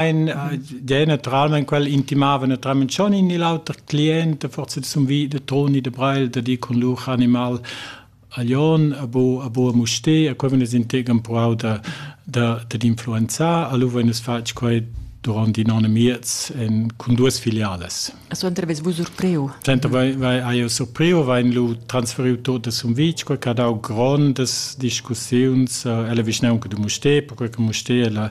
der naturalment quel intimava naturalment schon in l'auter client forse zum wie der Toni de Breil der die con lur animal Alion a bo a bo a muste a quei venes integam pro da da da influenza a lu venes fatg quei durante non miez en con duas filiales. A suenter ves vus surpriu? Suenter vai vai aio surpriu, vai lu transferiu totes sum vic, quei che ha dau grondas discussiuns, uh, ella vischnaunca du Muste, perquei che Muste è la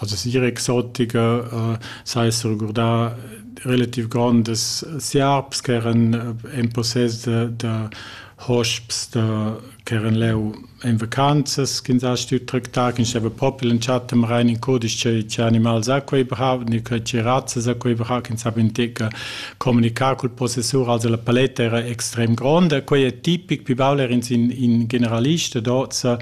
La sera exotica s'ha ess regurdà relativ grondas siarps ch'eran in possess da da hosps da ch'eran leu en vacanzas ch'ins ha stü tractà, ch'ins steva propi l'entschatta marain in cudisch che che animals ha quei brau, ni che che razzas ha quei brau, ch'ins ha mintica comunichà cul possessur, also la paletta era extrem gronda. Quei è tipic, pi baul er'ins in in generalista d'hoz,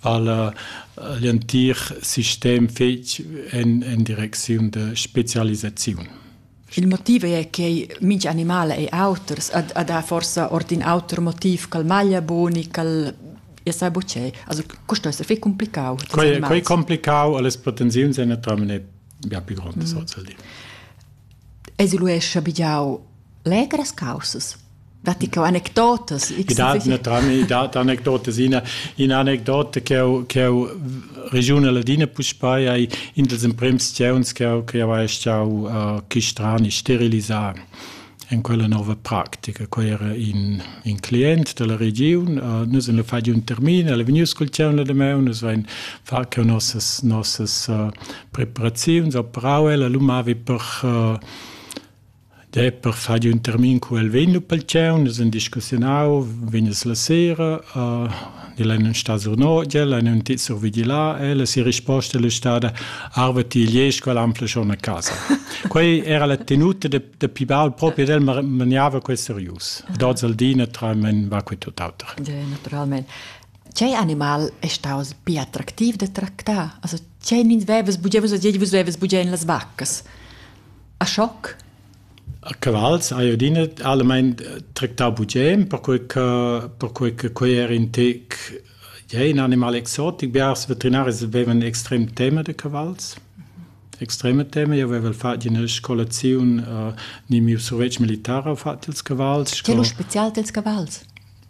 vala l'entir sistem fetg en, en direcziun de specialisaziun. Il motiv è che minch animal è auters, ad, ad ha forsa ord in auter motiv ch'al maglia boni, ch'al e sai bucei. Also questo è fai complicau. Quei, quei complicau, alle potenziazioni è naturalmente ja più grande mm. social. esoluescha bigiau legras caussas. Datti che anecdotas? I dat naturalmein i dat anecdotas. Ina, ina anecdota che ho, che ho regiuna ladina puspei ei in dels emprems sceunds che ho, che ho ei stau uh, chistrani sterilisar en quella nova practica. Quei era in, in client della regiun, uh, nus en le fai un termin, el è vegnius col ceu la de meu, nus vein far che nossas nossas uh, preparaziuns a prau ella lu mavi per uh, de per far un termin cu el vegn lu pel tgeu, nus en discussionau, venes la sera, uh, di la non sta sur nogia, la non ti sur vigila, e la si risposta è stata arve ti lies qual ampla schon a casa. Quei era la tenuta de, de Pibal proprio del maniava quel serius. Dots al dina tra men va quei tuttauter. Ja, naturalmente. Tgei animal ei staus bia attractiv da tractar? Also, tgei nins vevas bugen, vus odiei, vus vevas bugen las vaccas. A schoc? A cavals, a iodina, allemein tractar bugen, perquei che perquei che quei era in tec ja, in animal exotic. Biars veterinaris vevan extrem tema de cavals. Extreme tema. Io avevo fatto una scolazione uh, ni mio survetsch militare ho fatto ils cavals. Che lo special dels cavals?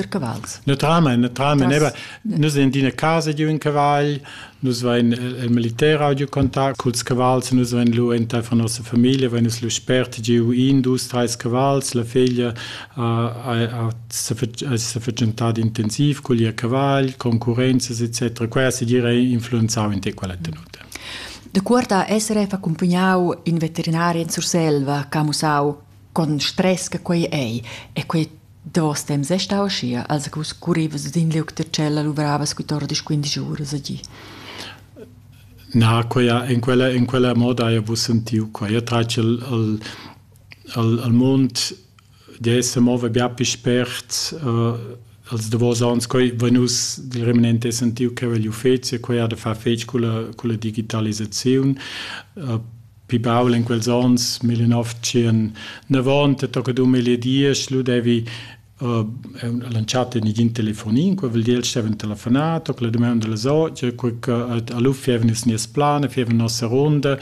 der cavals. Naturalmein, naturalmein Tras... eva nus en d'ina casa giu in cavagl, nus vein il militer ha giu contact culs cavals, nus vein lu entei von nossa famiglia vein nus lu spert giu in, dus, drei cavals, la figlia ha s'afficientà intensiv cugl ihr cavagl, concurrenzas etc. Quella se gira influenzau in te quella tenuta. De cuorta essere accompagnau in veterinaria in Surselva, camusau con stress che quei ei e quei Davos temps è stà uschia, als che vus currivas sin liug da tschella luvravas sco tordisch quindisch uras a gi. Na, quella, in, quella, in quella moda hai vus sentiu qua. Io trac al, al, al, al mund de esse move bia più spert uh, als davos ans coi venus del remanente sentiu che il ufficio quei ha da far fetg con la, con la digitalisazione uh, pi baul in quels onns 1990 tocca 2010 lu devi uh, lanciato in igin telefonin qua vuol dir steven telefonato la domanda della socia qua che allu fieven il nies plan fieven nossa ronda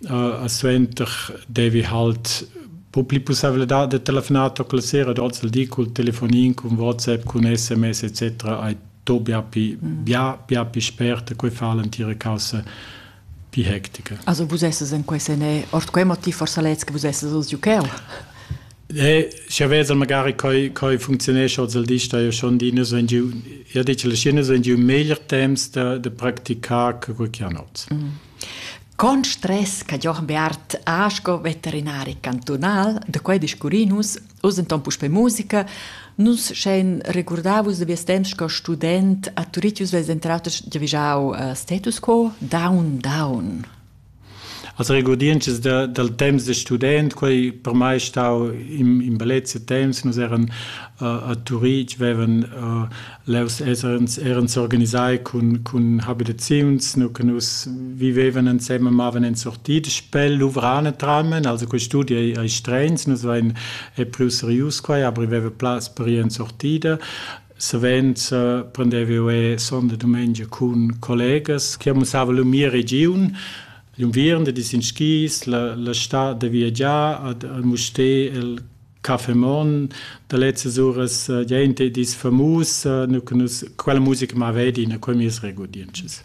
uh, a suenter devi halt po pli possibilità de telefonato con la sera dort il di col telefonin con WhatsApp con SMS etc ai to bia pi bia bia pi sperta quei fa l'antira causa Di hectica. Also vus esses en quei sen e ord quei motiv forsa lez che vus esses oz giucheu. Eh, sche vezel magari coi coi funzionesce oz al di sta io schon di so in giu ja dice le scene so in giu meglier temps da da practicar che quel chianot. Mm. Con stress che Jochen Beart Asco veterinari cantonal de quei discurinus Oz enton puspei musica. Nus schein regurdavus da vies temps sco student a Turitius vess entraus giavischau uh, status quo down down. Als regurdiences da, dal temps de student, quei per mai stau in, in bellezia temps, nus eran uh, a Turitg, vevan uh, Leu eran s'organisai cun, cun habitaziuns, nu che nus vivevan ensemen, mavan en sortit, spel luvrane tramen, also quei studi ei, ei streins, nus vein è più serius quai, aber veva plaz per ir en sortida. Savens uh, prendevo e sonda domenica cun collegas che mussava la mia region, l'unviern da dis in skis, la, la stad da viagiar ad, al musté, el Caffè Mon da lezzas uras uh, gente dis famus uh, nu nus quella musica ma vedi in quei mes regodientschas.